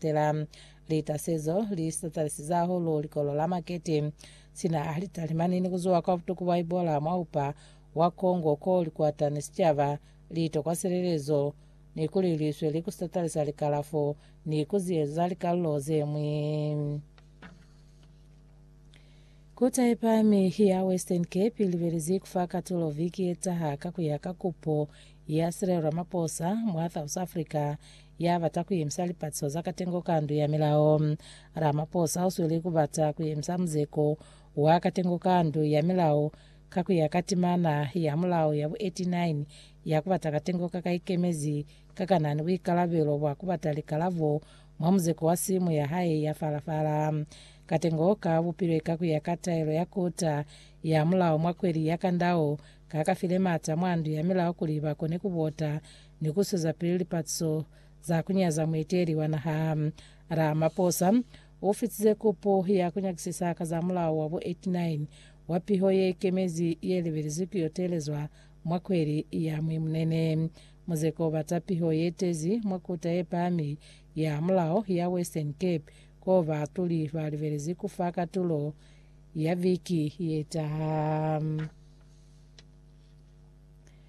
Tela lita se zo li satalisiza hahulu likolo la makete. Sina a lita limani ni ku zuwa kwa butuku bwa Ebola mwa upa wa Congo ko li kwata ni sicaba, li tokwa silelezo, ni kuli li sweli ku satalisa likalafo ni ku ziyezo za likalulo ze ñwi. Kota ye Pahami ya Western Cape i libelezi ku fa katulo viki ye taha ka ku ya ka kupo ya Cyril Ramaphosa mwa South Africa ya bata ku yemisa lipatiso za katengo ka Ndu ya Milao. Ramaphosa u sweli ku bata ku yemisa muzeko wa katengo ka Ndu ya Milao ka ku ya ka timana ya mulao ya bu 89 ya ku bata katengo ka ka ikemezi ka ka na ni buikalabelo bwa ku bata likalabo mwa muzeko wa simu ya hae ya fala-fala. Katengo ka bupilwe ka ku ya ka taelo ya Kota ya Mulao mwa kweli ya Kandao ka ka file m'ata mwa Ndu ya Milao kuli ba kone ku bota ni ku zwezapili lipatiso za ku nyaza muiteli wa naha. Ramaphosa u fitize kopo ya ku nyakisisa ka za mulao wa bo 89 wa piho ye ikemezi ye lebelezwi ku yo teelezwa mwa kweli ya Mwimunene. Muzeko o bata piho ye tezi mwa Kota ye Pahami ya Mulao ya Western Cape k'o baatuli ba lebelezi ku fa katulo ya viki ye taha.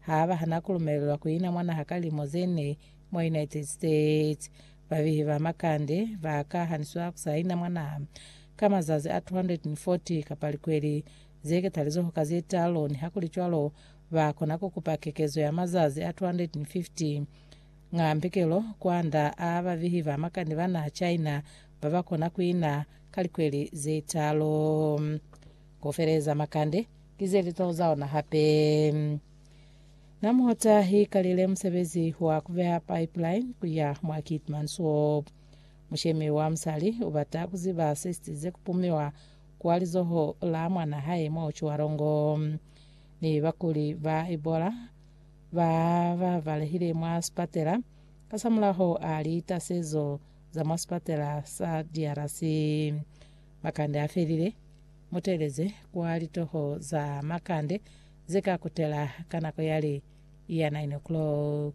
Ha ba hana ku lumelelwa ku ina mwa naha ka limo ze ne mwa United States, babehi ba makande ba ka haniswa ku sa ina mwa naha ka mazazi a 240 kapa likweli ze ketalizoho ka ze talu, nihakulicwalo ba kona ku kupa kekezo ya mazazi a 250. Nga mbikelo, kwanda a babehi ba makande ba naha China ba ba kona ku ina ka likweli ze talu. Ku feleza makande ki ze litolo za ona hape. Na muhota i kalile musebezi wa ku beha pipeline ku ya mwa Keetmanshoop. Mushemi wa musali u bata ku ziba se sitize ku pumiwa kwa lizoho la mwan'a hae mwa Otjiwarongo. Ni bakuli ba Ebola ba ba balehile mwa sipatela kasamulaho a litasezo za mwa sipatela sa DRC. Makande a felile. Mu teeleze kwa litoho za makande ze ka kutela ka nako ya li ya 9 o'clock.